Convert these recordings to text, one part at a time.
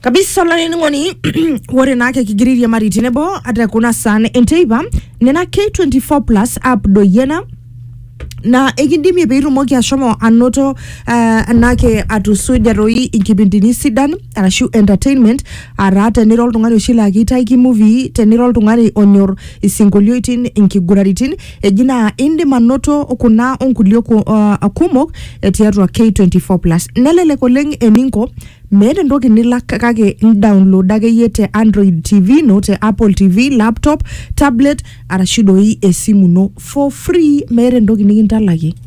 kabisa olainining'oni ore naa kekigira airiamari tenebo ata kuna saan enteipa nena k24 plus app doi ena na ekindimie piitumoki ashomo anoto uh, enake atusuja toi inkipindini sidan arashu entertainment ataa tenira oltung'ani oshi laa keitaiki movie tenira oltung'ani onyor isinkolioitin inkiguraritin Eji naa indim anoto kuna onkulie ku- uh, kumok eh, tiatua K24 plus. Nelelek oleng eninko meeta entoki nilak kake indownload akeyie te Android TV ino, te Apple TV, laptop, tablet arashu doi esimu ino for free meeta entoki nikintalakie.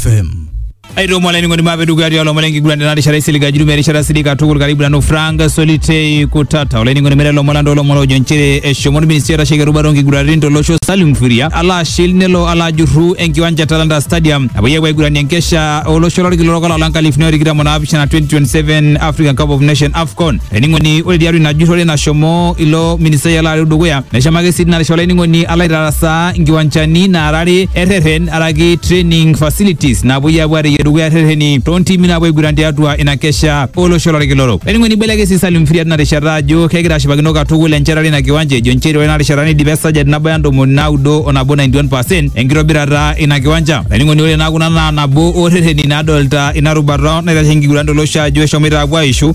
FM. aitomo olainining'oni maape dukuya tialo omon enkiguran tena rishata isilig ajirumia erishata sidai katukul karibu nanu frank solitei kutata olainining'oni mere lomon landa olomon ojo nchere eshomo orministri oitasheki erubata onkiguraritin tolosho salim furia alo ashil nelo alo ajurru enkiwanja e talanta stadium napuoi apuo aiguranie enkesha olosho lorkila orok olapa le nkalifuni o tikitam o naapishana 2027 african cup of nation afcon Laining'oni ore tiatua ina jurrore nashomo ilo ministai alo areu dukuya neshomo ake sii tina rishata olaining'oni alo aitarasaa nkiwanchani naara are erreren araki training facilities naapuoi aapuo aareyie dukuya rrereni toontimi naapuo aiguran tiatua ina kesha olosho lorkila orok. Laining'oni ibelekeny sii Salim Firia tina rishata ajo kegira ashipakino katukul enchetare ina kiwanja ejo nchere ore ina rishata neidipa esajati nabaya ntomoni naudo o nabo 91 percent enkitobirata ina kiwanja. Laining'oni ore naa kuna naa nabo oo rrereni naadolita ina rubata naitasheki nkiguran tolosho ajo eshomoita aapuo aaishu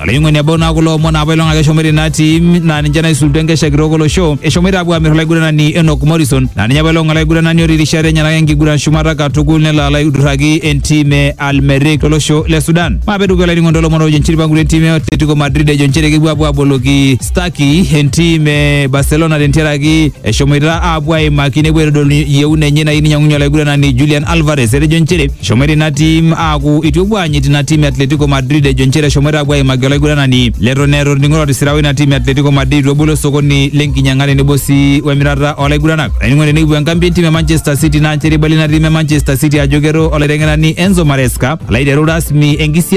olaing'oni ebau naa kulo omon apa ilong ake eshomoita ina tim naa ninche naisulutua enkesha kitok olosho eshomoita apuo aamir olaiguranani Enock Morrison naa ninye apa ilong olaiguranani otii irishat enyenak enkiguran shumata katukul nelo alo aidurraki entim e Al Merrikh tolosho le Sudan maape dukuya olainining'oni toolomon oojo nchiripa nkulie tim e Atletico Madrid ejo nchere kepuo apuo aboloki Stucky entim e Barcelona tentiaraki eshomoita apuo aimaki nepuo aitodolu yieuna enye nayieu ninyiang'unye olaiguranani Julian Alvarez etejo nchere Eshomoita ina tim aaku itu epuo aanyit ina tim e Atletico Madrid ejo nchere eshomoita aapuo aimaki olaiguranani leton eeta orning'o otisira oina tim e Atletico Madrid itu ebolo osokoni lenkinyang'a tenebo sii wemirata oolaiguranaka. Olainining'oni tenikipuo enkambi entim e Manchester City naa nchere eibala ina tim e Manchester City ajo keto olaiteng'enani Enzo Maresca alo aiteru rasmi enkisiaai